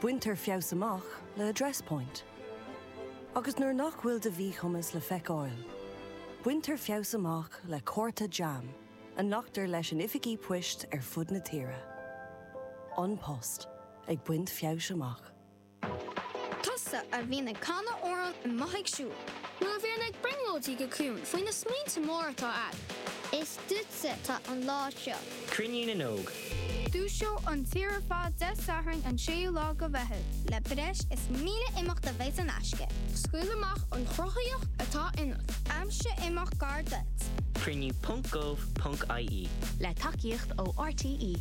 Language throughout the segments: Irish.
Baintear feabhas amach le Address Point. Agus nuair nach bhfuil do mhíchumas le feiceáil, baintear feabhas amach le cárta JAM a nglactar leis in oifigí poist ar fud na tíre. An Post ag baint feabhais amach. Tusa a bhíonn ag canadh amhráin amuigh ag siúl. Nó a bhíonn ag brionglóidí go ciúin faoi na smaointe móra atá a'd. Is. Duitse atá an lá seo. Cruinniú na nÓg. Dúiseoidh an tír ar fad Dé Sathairn an 6ú lá de Mheitheamh. Le breis is 1,000 imeacht a bheas in aisce. Scaoil amach an chruthaitheacht atá ionat. Aimsigh imeacht gar duit. Cruinniú ponc gov ponc ie. Le tacaíocht ó RTÉ.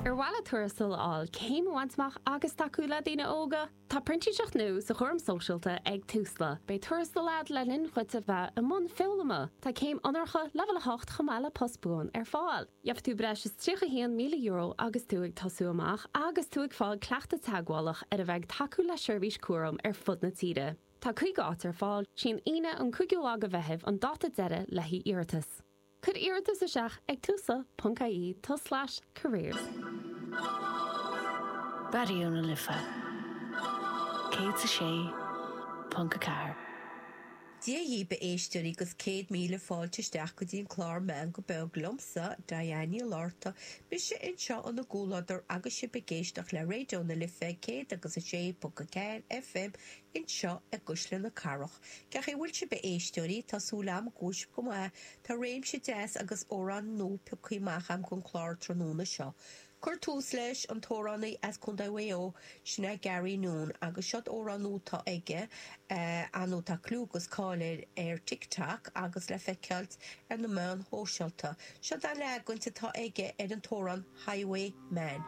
Ar mhaith leat tuarastal a fháil, céim a bhaint amach agus tacú le daoine óga? Tá printíseacht nua sa chúram sóisialta ag Tusla. Beidh tuarastal agat le linn dhuit a bheith i mbun foghlama. Tá céim onóracha leibhéal 8 chomh maith le post buan ar fáil. Gheobhaidh tú breis is €31,000 agus tú ag tosú amach agus tú ag fáil cleachtaidh teagmhálach ar a bheith ag tacú le seirbhís cúraim ar fud na tíre. Tá 50 áit ar fáil. Is í an Aoine an 5ú lá de Mheitheamh an dáta deiridh le haghaidh iarratas. Cuir iarratas isteach ag tusla.ie tul/careers. Raidió na Life 106.4. Dia dhaoibh a éisteoirí agus céad míle fáilte isteach go dtí an clár Meán go beag liomsa, Diane Níl orta, mise anseo in bhur gcomhluadar agus sibh ag éisteach le Raidió na Life 106.4 FM Anseo i gCuisle na Cathrach, cén chaoi a bhfuil sibh a éisteoirí, tá súil agam go bhfuil sibh go maith. Tá réimse deas amhráin nua piocthaí amach agam don clár tráthnóna seo. Ag cur tús leis an t-amhránaí as Contae Mhaigh Eo, sin é Garron Noone, agus seod amhrán nua tá aige, ar ndóigh tá clú agus cáil air ar TikTok agus le feiceáilt ar na meáin shóisealta. Seod an leagan atá aige ar an t-amhrán Highway Man.